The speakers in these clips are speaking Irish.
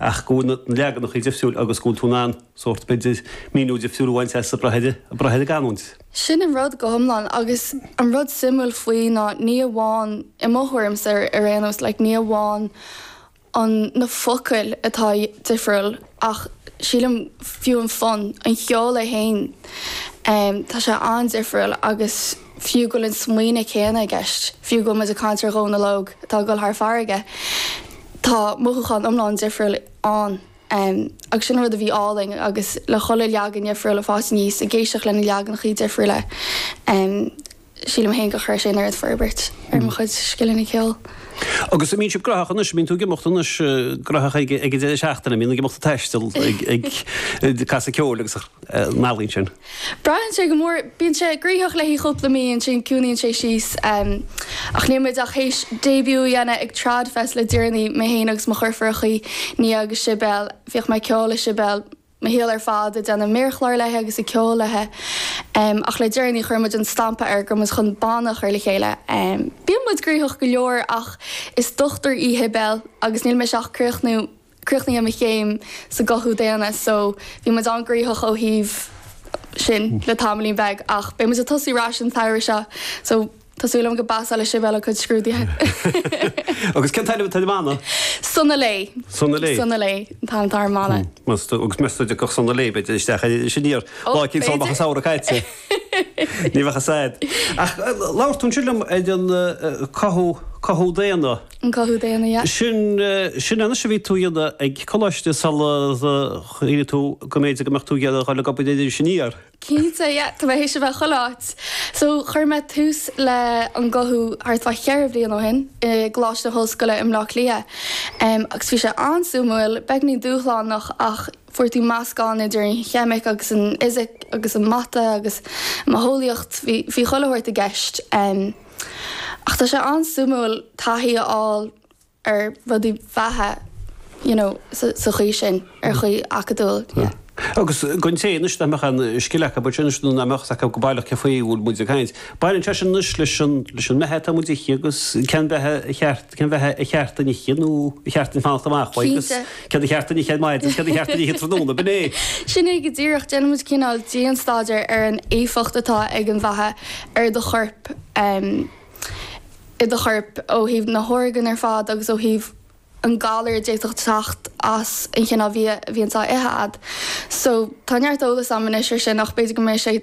ach go bhfuil na leaganachaí difriúil agus go bhfuil tú in ann sórt, b'fhéidir, míniú difriúil a bhaint as ag brath ar an gcanúint. Sin an rud go hiomlán agus an rud suimiúil faoi ná ní amháin, i mo thuairimse ar aon nós, like ní amháin an na focail atá difriúil ach sílim fiú an fonn, an cheol é féin, tá sé an-difriúil agus. fiú go bhfuil an smaoineadh céanna i gceist, fiú go bhfuil muid ag caint ar Dhónall Óg atá ag dul thar farraige, tá mothúchán iomlán difriúil ann agus sin an rud a bhí álainn agus le chuile leagan dhifriúil ag fás aníos ag éisteacht le na leaganachaí difriúla, sílim féin gur chuir sé an oiread forbairt ar mo chuid scileanna ceoil. Agus an mbíonn sibh graitheach anois, an mbíonn tú ag imeacht anois graitheach ag an deireadh seachtaine, an mbíonn ag imeacht ag taisteal ag casadh ceoil agus an ealaín sin? Braitheann sé go mór, bíonn sé graitheach le haghaidh cúpla mí, ansin ciúnaíonn sé síos. Ach níl muid ach théis début a dhéanamh ag Tradfest le deireanaí, mé féin agus mo dheirfiúrachaí, Nia agus Sibéal. Bhíodh mé ag ceol le Sibéal, mo shaol ar fad, ag déanamh méarchláir léi agus ag ceol léi. Ach le deireanaí chuir muid an stampa air go raibh muid chun banna a chur le chéile. Bíonn muid graitheach go leor ach is dochtúir í Sibéal agus níl mise ach críochnú críochnaithe mo chéim sa gcothú daonna so bhí muid an-ghraitheach ó thaobh sin le tamaillín beag ach beidh muid ag tosú arais an samhradh seo so tá súil agam go bpassálfaidh Sibéal a cuid scrúduithe! Agus cén t-ainm atá ar an mbanna? Sona Léi. Sona Léi? Sona Léi an t-ainm atá ar an mbanna. Meas tú, agus meas tú an dtiocfadh Sona Léi b'fhéidir isteach ar Iris Aniar, lá eicínt sula mbeadh an samhradh caite. Ní bheadh a fhios a'd. Ach labhair tú ansin liom ar an cothú, cothú daonna. an cothú daonna. Sin anois a bhí tú a dhéanamh ag coláiste sular shíl tú go mb'fhéidir go mbeadh tú ag iarraidh a dhul ag obair in Iris Aniar? Cinnte, yeah, tá mé théis a bheith chuile áit. So, chuir mé tús le an cothú thart fá cheithre bhliain ó shin i gColáiste na hOllscoile i mBleá Cliath em agus bhí sé an-suimiúil, beagáinín dúshlánach ach fuair tú meascán idir an cheimic agus an fhisic agus an mata agus em bitheolaíocht, bhí, bhí chuile shórt i gceist. Ach tá sé an-suimiúil taithí a fháil ar rudaí beatha you know sa chaoi sin, ar chaoi acadúil yeah. Agus don té anois nach mbeadh aon scil acu but anois nó nach mbeadh fhios acu go baileach cé faoi a bhfuil muid ag caint, baineann sé sin anois leis an leis an mbeatha atá muid a ithe agus cén beatha ar cheart cén beatha ar cheart dúinn a ithe nó ar cheart dúinn fanacht amach uaidh, agus céard ar cheart dúinn a ithe ar maidin, agus céard ar cheart dúinn a ithe tráthnóna. B'in é. Sin é go díreach. Déanann muid cineál dianstaidéar ar an éifeacht atá ag an bheatha ar do chorp, i do chorp ó thaobh na horgáin ar fad agus ó thaobh an galar a d'fhéadfadh teacht as an chineál bhia a bhíonns á ithe agat. So, tá neart eolas agam anois ar sin ach b'fhéidir go mbeidh sé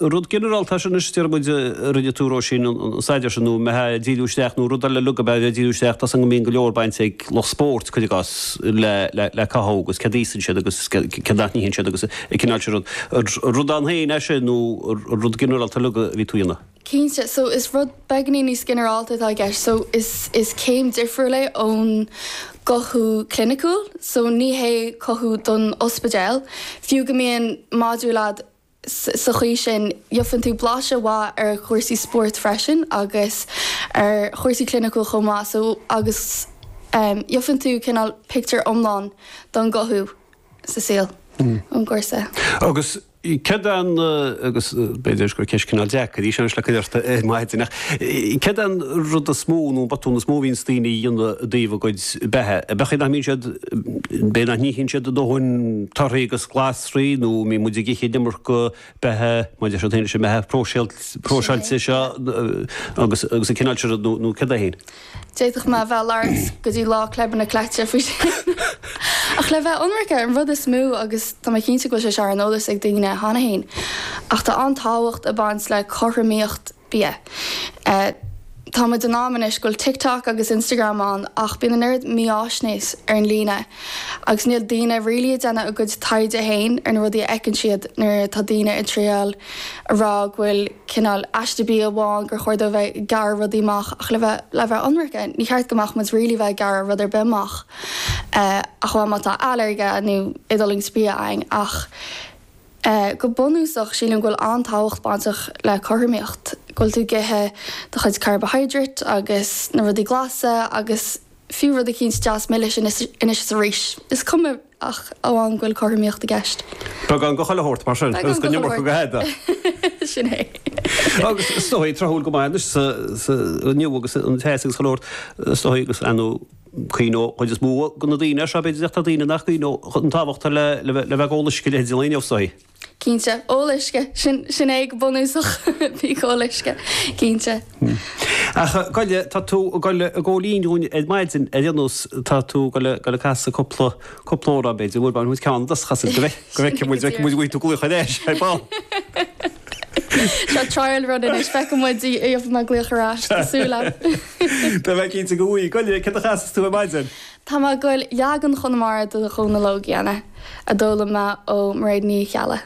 Rud ginearálta é sin anois, deir muid, rinne tú, Róisín, an staidéar sin, nó an mbeifeá ag díriú isteach, nó rud ar leith uilig a mbeifeá ag díriú isteach, tá a fhios agam go mbíonn go leor bainte ag lucht spóirt, cuid acu, le cothú, agus cad a íosann siad agus cad a itheann siad agus an cineál sin rud. An rud ann féin é sin, nó an rud ginearálta uilig a bhí tú a dhéanamh? Cinnte, so is rud beagáinín níos ginearálta atá i gceist, so is céim difriúil é ón gcothú cliniciúil, so ní hé cothú don ospidéal, fiú go mbíonn modúl a'd sa chaoi sin, gheofann tú blaiseadh mhaith ar chúrsaí spóirt freisin agus ar chúrsaí cliniciúil chomh maith, so agus gheofann tú cineál pictiúr iomlán don gcothú sa saol ón gcúrsa. Agus céard é an, agus b'fhéidir gur ceist cineál deacair í seo anois le cur ort ar maidin, ach céard é an rud is mó nó an botún is mó a bhíonns daoine a dhéanamh i dtaobh a gcuid beatha? An mbíonn siad, b'fhéidir nach n-itheann siad a ndóthain torthaí agus glas, raí nó mbíonn muid ag ithe an iomarca beatha, mar a deir siad féin, leis an mbeatha próiseáilte seo agus an cineál seo rud nó céard é féin. D'fhéadfadh mé a bheith ag labhairt go dtí Lá Philib an Chleite faoi sin. Ach le bheith ionraice, an rud is mó, agus tá mé cinnte go bhfuil sé seo ar an eolas ag daoine cheana féin, ach tá an-tábhacht ag baint le cothromaíocht, bia. Tá muid in am anois go bhfuil TikTok agus Instagram ann ach bíonn an oiread mífháisnéis ar an líne agus níl daoine really ag déanamh a gcuid taighde féin ar na rudaí a fheiceann siad nuair atá daoine ag triail a rá go bhfuil cineál aiste bia amháin gur chóir dóibh bheith ag gearradh rudaí amach ach le bheith ionraice ní cheart go mbeadh muid really bheith ag gearradh rud ar bith amach ach amháin má tá ailléirge nó éadulaingt bia againn ach é. Go bunúsach, sílim go bhfuil an-tábhacht bainteach le cothromaíocht, go bhfuil tú ag ithe do chuid carbohydrate agus na rudaí glasa agus fiú rud eicínt deas milis anois is arís. Is cuma ach amháin go bhfuil cothromaíocht i gceist. Beagán de chuile shórt, mar sin, agus gan an iomarca de thada. Sin é. Agus is dóigh, tráthúil go maith anois inniu agus an teas agus chuile shórt, is dóigh, agus a. Cuimhneoidh cuid is mó de na daoine air seo, b'fhéidir, ach tá daoine nach gcuimhneoidh an tábhacht le le bheith ag ól uisce le hydration, is dóigh. Cinnte, ól uisce, sin sin é go bunúsach, bí ag ól uisce, cinnte. Ach gabh i leith, tá tú ag goil ag gabháil fhoinn dhúinn ar maidin ar aon nós, tá tú ag goil ag goil ag casadh cúpla cúpla amhrán, b'fhéidir, nó b'fhéidir ceann a chasfas tú, go bhfeicfidh muid, go bhfeicfidh muid an bhfaighidh tú glaoch ar ais, ar ball. Seo trial run anois, feicfidh muid an bhfaighidh mé glaoch ar ais, tá súil agam. Tá mé cinnte go bhfaighidh. Gabh i leith, céard a chasfas tú ar maidin? Tá mé ag goil leagan Chonamara de Dhónall Óg a dhéanamh a d'fhoghlaim mé ó Mairéad Ní Cheallaigh.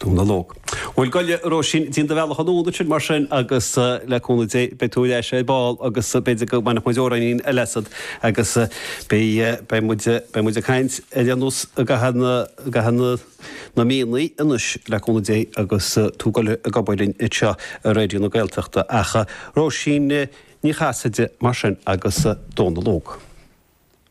Dónall Óg. Bhuel, gabh i leith, a Róisín, déan do bhealach anonn ansin, mar sin, agus le cúnamh Dé, beidh tú ar ais ar ball, agus b'fhéidir go mbainfeadh muid amhráinín eile asat, agus beidh, beidh muid, beidh muid ag caint ar aon nós i gcaitheamh na, i gcaitheamh na, na míonna anois, le cúnamh Dé, agus tú ag goil ag obair linn anseo ar Raidió na Gaeltachta. Ach Róisín Ní Chasaide, mar sin, agus Dónall Óg.